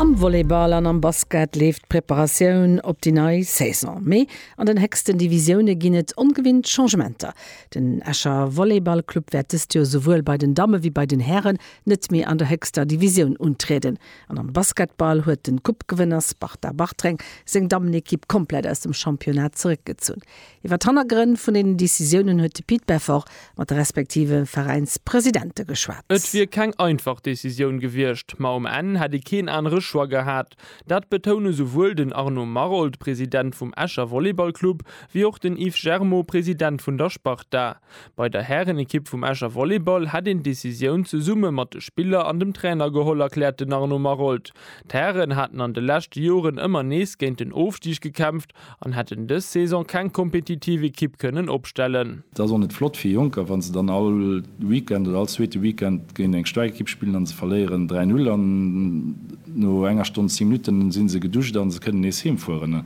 Am Volleyball an am Basket leeft d'Preparatioun op déi nei Saison. Mee an den héchsten Divisioune ginn et ongewinnt Changementer. Den Escher Volleyballclub wäert dëst Joer souwuel bei den Damme wéi bei den Hären net méi an der héchster Divisioun untrieden. An am Basketball huet den Coupe-Gewënner Sparta Bartreng seng Dammenekipp komplett aus dem Championnat zeréckgezunn. Iwwer d'Hannergrënn vun deenen Decisiounen huet de Pit Beffort mat de respektive Veräinspresidente geschwat. Et wier keng einfach Decisioun gewiescht, ma um Enn hätt ee keen anere Choix gehat. Dat betoune souwuel den Arnaud Maroldt, President vum Escher Volleyballclub, wéi och den Yves Germo, President vun der Sparta. Bei der Härenekipp vum Escher Volleyball hätt een d'Decisioun zesumme mat de Spiller an dem Trainer geholl, erkläert den Arnaud Maroldt. D'Hären haten an de leschte Joren ëmmer nees géint den Ofstig gekämpft An hätten dës Saison keng kompetitiv Ekipp kënnen opstellen. Et ass och net flott fir Jonker, wa se dann all Weekend oder all zweete Weekend géint eng staark Ekipp spillen a se verléieren 3, 0 an no enger Stonn 10 Minutten si se geduscht a se kënnen nees heem fueren.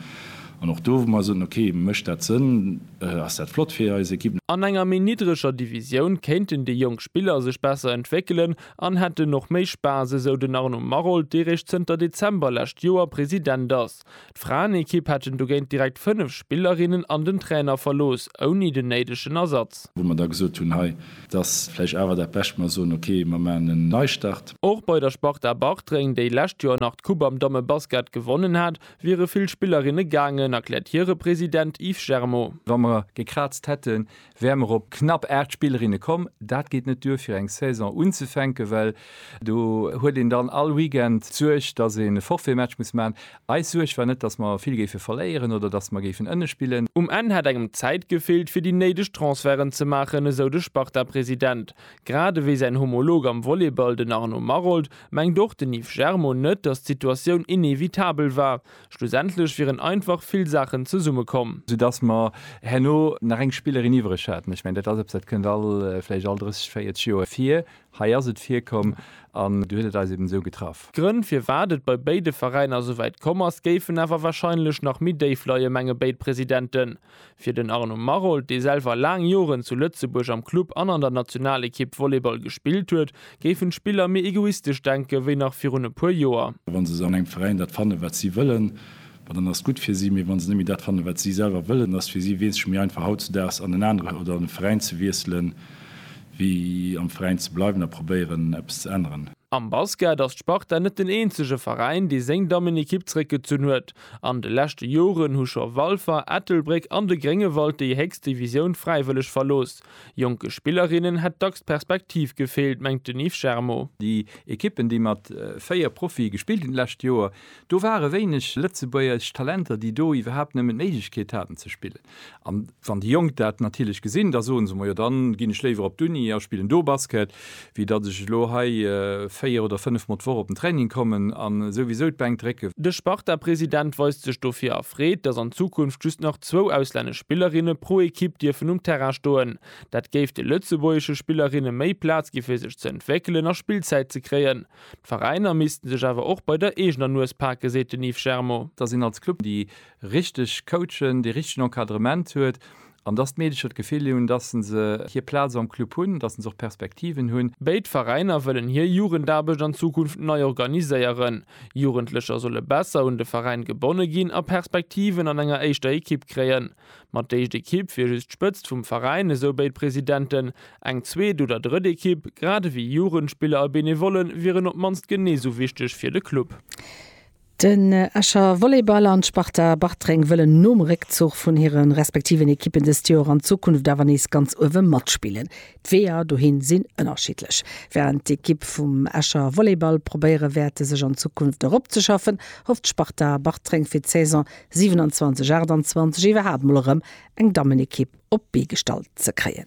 An och do, wou mer soten, ok, mécht dat Sënn, ass dat flott fir eis Ekipp. An enger méi niddreger Divisioun kéinten déi jonk Spiller sech besser entwéckelen an hätten och méi Spaass, esou den Arnaud Maroldt, dee réischt zënter Dezember lescht Joer President ass. D'Fraenekipp hätten dogéint direkt 5 Spillerinnen an den Trainer verlooss, ouni den néidegen Ersatz. Wou mer da gesot hunn, hei, et ass vläicht awer dat Bescht, mer soen, ok, mer maachen en Neistart. Och bei der Sparta Bartreng, déi lescht Joer nach d'Coupe am Dammebasket gewonnen hat, wiere vill Spillerinne gaangen, erkläert hire President Yves Germaud. Wa mer gekraazt hätten, wäre mer op knapp 8 Spillerinne komm. Dat geet net duer fir eng Saison unzefänken, well do huet een dann all Weekend d'Suerg, dass een e Forfaitmatch muss maachen. Eis Suerg war net, dass mer vill géife verléieren oder dass mer géifen ënne spillen. Um Enn hätt engem d'Zäit gefeelt, fir déi néideg Transferten ze maachen, esou de Sparta-President. Grad ewéi säin Homolog am Volleyball, den Arnaud Maroldt, mengt och den Yves Germon net, dass d'Situatioun inevitabel war. Schlussendlech wieren einfach vill Saachen zesummekomm. Soudass mer herno nach eng Spillerin iwwereg haten. Ech mengen, dat ass eppes, dat kënnt all, vläicht all 30, 40 Joer vir. Hei ass et virkomm an du huet et eis eben esou getraff. D'Grënn, firwat et bei béide Veräiner esouwäit komm ass, géifen awer warscheinlech nach méi déif leien, menge béid Presidenten. Fir den Arnaud Maroldt, dee selwer laang Joren zu Lëtzebuerg am Club an an der Nationalekipp Volleyball gespillt huet, géifen d'Spiller méi egoistesch denken, wéi nach virun e puer Joer. Wa se an engem Veräin dat fannen, wat si wëllen, ma dann ass et gutt fir si. Mee wa se net méi dat fannen, wat si selwer wëllen, ass et fir si wesentlech méi einfach hautzedaags an en anere oder an e Veräin ze wiesselen, wéi am Veräin ze bleiwen a probéieren, eppes ze änneren. Am Basket ass d'Sparta net den eenzege Veräin, dee seng Dammenekipp zeréckgezunn huet. An de leschte Joren hu scho Walfer, Ettelbréck an de Gréngewald déi héchst Divisioun fräiwëlleg verlooss. Jonke Spillerinnen hätt dacks d'Perspektiv gefeelt, mengt den Yves Germo. Déi Ekippen, déi mat 4 Profie gespillt hunn d'lescht Joer, do ware wéineg lëtzebuergesch Talenter, déi do iwwerhaapt nëmmen d'Méiglechkeet haten ze spillen. An wann déi Jonk dat natierlech gesinn, da soe se mol, jo dann ginn ech léiwer op d'Uni a spillen do Basket, wéi datt ech elo hei véier oder fënnef mol d'Woch op den Training kommen a souwisou d'Bänk drécken. De Sparta-President weist sech dofir erfreet, datt an Zukunft just nach zwou auslännesch Spillerinne pro Ekipp dierfen um Terrain stoen. Dat géif de lëtzebuergesche Spillerinne méi Plaz gi fir sech ze entwéckelen a Spillzäit ze kréien. D'Veräiner missten sech awer och bei der eegener Nues pake seet den Yves Germo. Datt een als Club déi richteg coachen, dee richtegen Encadrement huet an dass d'Meedecher d'Gefill hunn, dass se hir Plaz am Club hunn, dass se och Perspektiven hunn. Béid Veräiner wëllen hir Jugendaarbecht an Zukunft nei organiséieren. Jugendlecher solle besser un de Veräin gebonne ginn a Perspektiven an enger éischter Ekipp kréien. Mat d'éischt Ekipp wier just d'Spëtzt vum Veräin, esou béid Presidenten. Eng zweet oder drëtt Ekipp, grad ewéi Jugendspiller a Benevolle wieren op d'mannst genee sou wichteg fir de Club. Den Escher Volleyball an d'Sparta Bartreng wëllen nom Réckzuch vun hire respektiven Ekippen dëst Joer an Zukunft awer nees ganz uewe matspillen. D'Weeër dohin sinn ënnerschiddlech. Wärend d'Ekipp vum Escher Volleyball probéiere wäerte sech an Zukunft eropzeschaffen, hofft d'Sparta Bartreng fir d'Saison 27, 28 iwwerhaapt mol erëm eng Dammenekipp op d'Bee gestallt ze kréien.